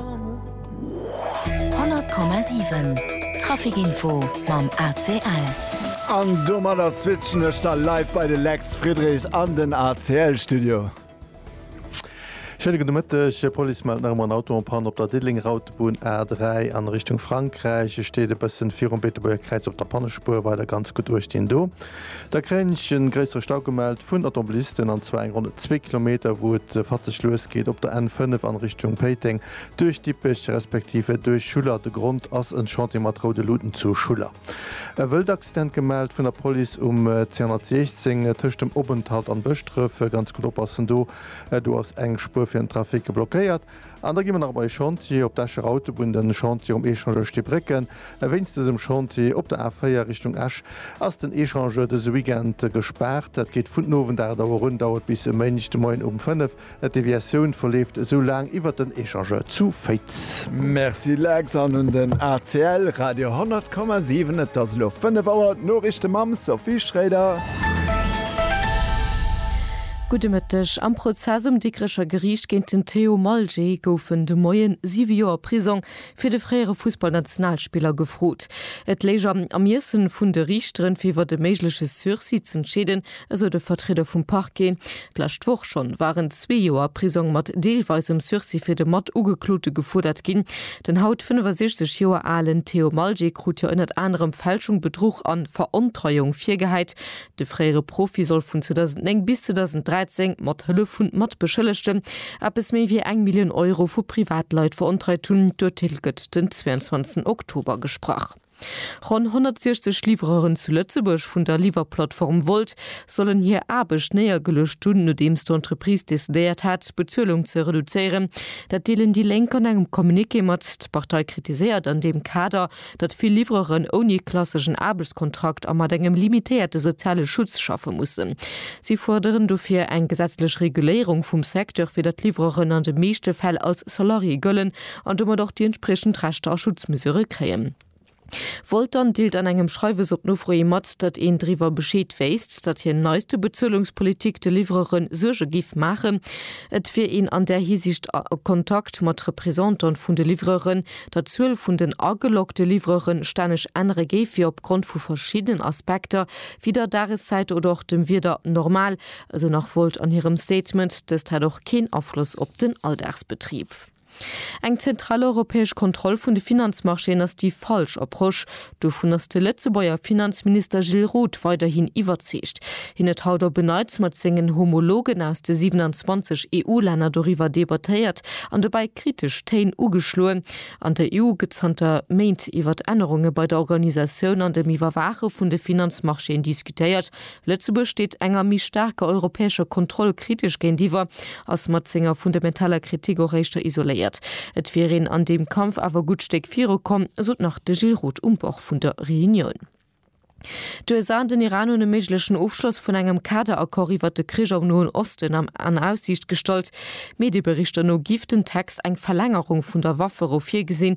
100,7 Traficinfo mam ACL. An domadder switchen ech da live bei de Lex Friedrich an den ACL-Studio. Schéine gudde Mëtteg. D'Police mellt nach emol en Auto en Panne op der Diddeleng-Rautebunn A3 a Richtung Frankräich. E steet e bëssen virum Beetebuerger Kräiz op der Pannespuer, weider ganz gutt uechtendoo. Da kréien ech en gréissere Stau gemellt vun Automobilisten, an zwar eng Ronn zwee Kilometer, wou et fatzeg lues geet op der N5 an Richtung Péiteng duerch Dippech respektiv duerch Schuller. De Grond ass en Chantier mat roude Luuten zu Schuller. E wëllt Accident gemellt vun der Police um 216 tëscht dem Openthalt an Bëschdrëf. Ganz gutt oppassen do, do ass eng Spuer fir den Trafic blockéiert. An da gi mer nach op eise Chantier op d'Escher Autobunn, de Chantier um Échangeur Stibrécken. Wéinst dësem Chantier op der A4 Richtung Esch ass den Échangeur dëse Weekend gespaart. Dat geet vun den Owend 8 Auer un, dauert bis e Méindeg de Moien um 5. D'Deviatioun verleeft esou laang iwwert den Échangeur zu Féiz. Merci Lex an un den ACL Radio 100,7. Et ass elo 5 Auer, d'Noriichte mam Sophie Schroeder. Gudde Mëtteg. Am Prozess um Dikrecher Geriicht géint den Théo Malgé goufen de Moien siwe Joer Prisong fir de fréiere Fussballnationalspiller gefrot. Et léich am Ermiessen vun de Riichteren, fir iwwer e méigleche Sursis z'entscheeden, esou de Vertrieder vum Parquet. D'lescht Woch schonn waren zwee Joer Prisong mat deelweisem Sursis fir de Matugeklote gefuerdert ginn. Den haut 65 Joer alen Théo Malgé krut jo ënnert anerem Fälschung, Bedruch a Verontreuung virgehäit. De fréiere Profi soll vun 2009 bis 2013, mat Hëllef vun Matbeschëllegten, eppes méi wéi eng Millioun Euro vu Privatleit verontreit hunn. D'Urteel gëtt den 22 Oktober gesprach. Ronn 160 Livreuren zu Lëtzebuerg vun der Liwwerplattform Wolt sollen hir Aarbecht néiergeluecht hunn, nodeems d'Entreprise decidéiert hat, d'Bezuelung ze reduzéieren. Dat deelen déi Lénk an engem Communiqué mat. D'Partei kritiséiert an deem Kader, datt vill Livreuren ouni klasseschen Aarbechtskontrakt a mat engem limitéierte soziale Schutz schaffe mussen. Si fuerderen dofir eng gesetzlech Reguléierung vum Secteur, fir datt Livreuren an de meeschte Fäll als Salarié gëllen an domat och déi entspriechend Rechter a Schutzmesure kréien. Voltan deelt an engem Schreiwes op Nofro hi mat, datt een driwwer Bescheed wéisst, datt hir neiste Bezuelungspolitik de Livreure Suerge géif maachen. Et wier een an där Hisiicht a Kontakt mat Representant vun de Livreure der Zuel vun den ageloggte Livrere stänneg ännere géif, fir opgrond vu verschiddenen Aspekter wéi der Dageszäit oder och dem Wieder normal, esou nach Wolt an hirem Statement. Dëst hätt och keen Afloss op den Alldagsbetrib. Eng zentral europäesch Kontroll vun de Finanzmarchéen ass déi falsch Approche, Dovun ass de Lëtzebuerger Finanzminister Gilles Roth weiderhin iwwerzeegt. Hien huet haut op en Neits mat sengen Homologen aus de 27 EU-Länner doriwwer debattéiert an dobäi kritesch Téin ugeschloen. An der EU gëtt zanter Méint iwwert Ännerunge bei der Organisatioun an dem Iwwerwaache vun de Finanzmarchéen diskutéiert, Lëtzebuerg steet enger méi staarker europäescher Kontroll kritesch géintiwwer, ass mat senger fundamentaler Kritik och éischter isoléiert. Et wier een an deem Kampf awer e gutt Stéck viru komm, sot nach de Gilles Roth um Bord vun der Reunioun. D'USA an den Iran hunn e méiglechen Ofschloss vun engem Kaderaccord iwwert de Krich am Noen Osten am an Aussiicht gestallt. Medieberichter no giff den Text eng Verlängerung vun der Wafferou virgesinn,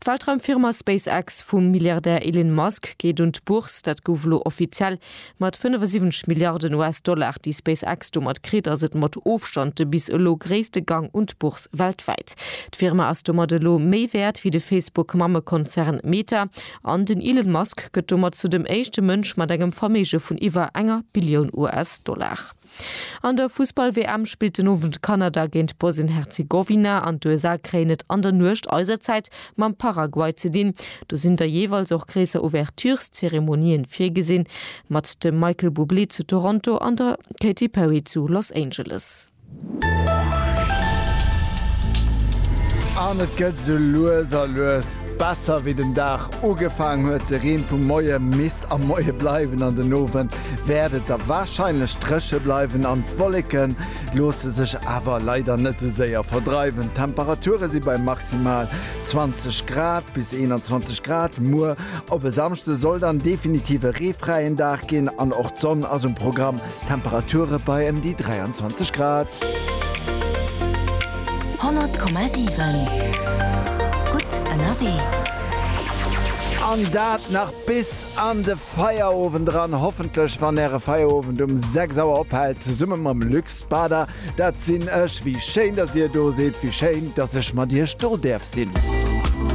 D'Weltraumfirma SpaceX vum Milliardär Elin Musk geet un d'Bourse, dat gouf elo offiziell. Mat 75 Milliarden US-Dollar, déi SpaceX domat kritt, ass et mat Ofstand de bis elo gréisste Gang un d'Bourse weltwäit. D'Firma ass domat elo méi wäert wéi de Facebook-Mammekonzern Meta an den Elon Musk gëtt domat zu dem éischte Mënsch mat engem Verméige vun iwwer enger Billioun US-Dollar. An der Fussball-WM spillt den Owend Kanada géint Bosnien-Herzegowina an d'USA kréien et an der Nuecht eiser Zäit mam Paraguay ze dinn. Do sinn da jeeweils och gréisser Ouvertureszeremonien virgesinn, mat dem Michael Bublé zu Toronto an der Katy Perry zu Los Angeles. An et gëtt sou lues a lues besser. Wéi den Dag ugefaangen huet, de Reen vum Moie misst am Moie bleiwen an den Owend wäert et da warscheinlech dréche bleiwen an d'Wolleke loosse sech awer leider net sou séier verdreiwen. D'Temperature si bei maximal 20 Grad bis 21 Grad. Muer op e Samschde soll dann definitiv e reefräien Dag ginn an och d'Sonn ass um Programm, Temperature bei ëm déi 23 Grad. 100,7 Gutt ënnerwee. An dat nach bis an de. Feierowend eran, hoffentlech wann äre Feierowend um 6 Auer ophält, zesumme mam Luc Spada. Dat sinn ech. Wéi schéin, datt dir do sidd, wéi schéin, datt ech mat iech do däerf sinn.